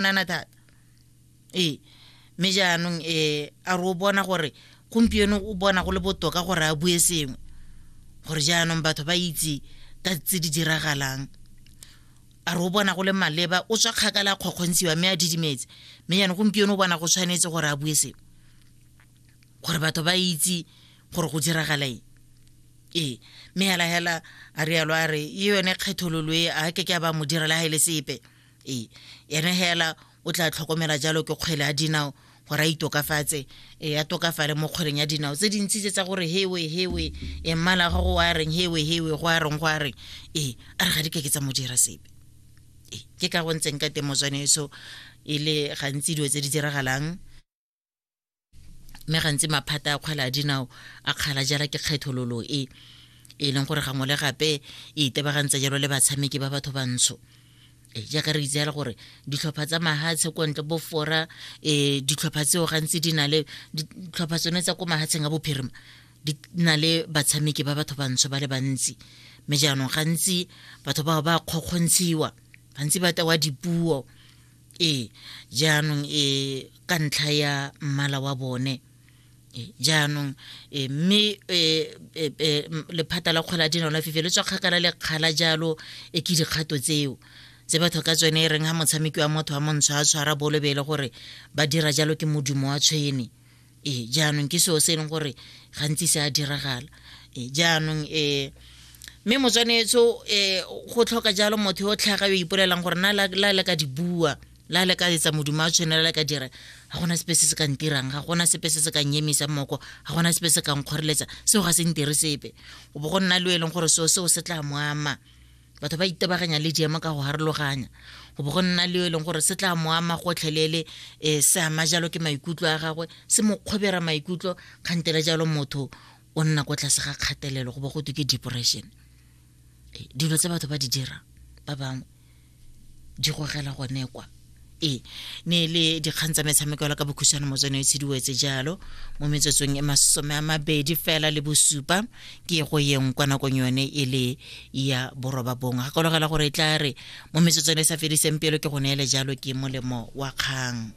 nana thata ee mme jaanong um a re o bona gore gompieno o bona go le botoka gore a bue sengwe gore jaanong batho ba itse ka tse di diragalang a re o bona go le maleba o tswa kgakala a kgokgontshiwa mme a didimetse mme jaanong gompieno o bona go tshwanetse gore a bue sengwe gore batho ba itse gore go diragala eng ee mme hela hela a rialo a re e yone kgethololo e a ke ke a ba mo direla ga e le sepe ee ene hela o tla tlhokomela jalo ke kgwele ya dinao gore a itokafatse e a tokafale mo kgweleng ya dinao tse dintsi tse tsa gore hewe hewe e mmala ga go wa reng hewe hewe go a reng go a reng ee a re ga di ke ke tsa mo dira sepe ee ke ka go ntseng ka teng motswane eso e le gantsi dilo tse di diragalang mme gantsi maphata a kgwele a dinao a kgala jala ke kgethololo e e leng gore gangwe le gape e itebagantse jalo le batshameki ba batho bantsho e jaaka re itse gore ditlhopha tsa mahatshe ko ntle bofora um ditlhopha tseo gantsi di na le ditlhopha tsone tsa ko mahatsheng a bophirima di na le batshameki ba batho bantsho ba le bantsi mme jaanong gantsi batho bao ba kgokgontshiwa gantsi ba tewa dipuo ee jaanong e ka ntlha ya mmala wa bone jaanong e, mme e, e, lephata la kgwela dinao la fife le tswa kgakala le kgala jalo e ke dikgato tseo tse batho ka tsone e reng ga motshameki wa motho wa montsho a tshwara bolobele gore ba dira jalo ke modumo wa tshwene ee jaanong ke seo se e leng gore gantsi se a diragala ee jaanong um mme motswanetso um eh, go tlhoka jalo motho yo o tlhaga yo ipolelang gore na la le ka di bua la le ka etsa moduma a tshwanela le ka dira ga gona sepe se se ka ntirang ga gona sepe se se ka nyemisa moko ga gona sepe se ka nkgoreletsa seo ga se ntire sepe go bo go nna le o e leng gore seo seo se tla mo ama batho ba itebaganya le jeemo ka go harologanya go bo go nna le yo e leng gore se tla mo ama gotlhelele um se ama jalo ke maikutlo a gagwe se mo kgobera maikutlo kgantele jalo motho o nna ko tlase ga kgatelelo go bo go twe ke depression dilo tse batho ba di dirang ba bangwe di gogela gone kwa e ne e le dikgang tsa metshameko la ka bokhuswane motswene e tshidiwetse jalo mo metsotsong e masome a mabedi fela le bosupa ke go yeng kwa nakong yone e le ya boroba bongwe gakologela gore e tla re mo metsotsong e sa fediseng pelo ke go neele jalo ke molemo wa kgang